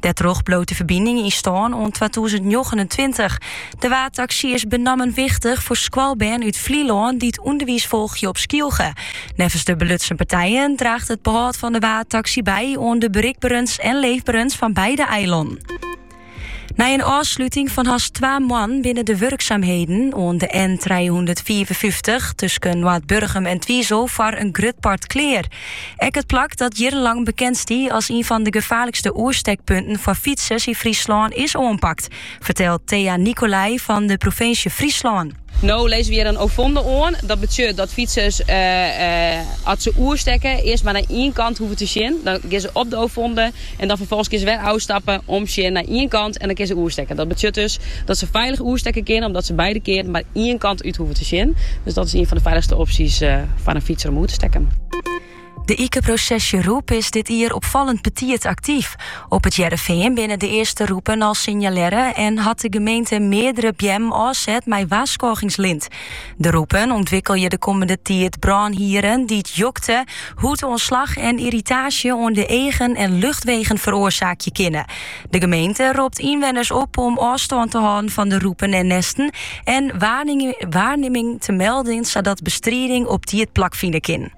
Dêrtroch bliuwt de ferbining yn stân oant 2029. De waadtaksy is benammen wichtich foar skoalbern út Flylân dy't ûnderwiis folgje op Skylge. Neffens de belutsen partijen draacht it behâld fan de waadtaksy by oan de berikberens en leefberens fan beide eilannen. Nei in ôfsluting fan hast twa moannen binne de wurksaamheden oan de N354 tusken Noardburgum en Twizel foar in grut part klear. Ek it plak dat jierrenlang bekend stie as ien fan de gefaarlikste oerstekpunten foar fytsers yn Fryslân is oanpakt, fertelt Thea Nicolay fan de provinsje Fryslân. No lizze we hjir in ovonde oan. Dat betsjut dat fytsers as se oerstekke earst mar nei ien kant hoege te sjen. Dan gean se op de ovonde. En dan ferfolgens kinne se wer ôfstappe, omsjen nei ien kant en dan kinne se oerstekken. Dat betsjut dus dat se feilich oerstekke kinne, omdat se beide kearen mar ien kant út hoeven te sjen. Dus dat is ien fan de feilichste opsjes foar in fytser om oer te stekken. De ikeprosesjerûp is dit jier opfallend betiid aktyf. Op It Hearrenfean binne de earste rûpen al sinjalearre en hat de gemeente meardere beammen ôfset mei warskôgingslint. De rûpen ûntwikkelje de kommende tiid brânhierren dy't jokte, hûdútslach en irritaasje oan de eagen en luchtwegen feroarsaakje kinne. De gemeente ropt ynwenners op om ôfstân te hâlden fan de rûpen en nêsten en waarnimmings te melden sadat bestriding op tiid plakfine kin.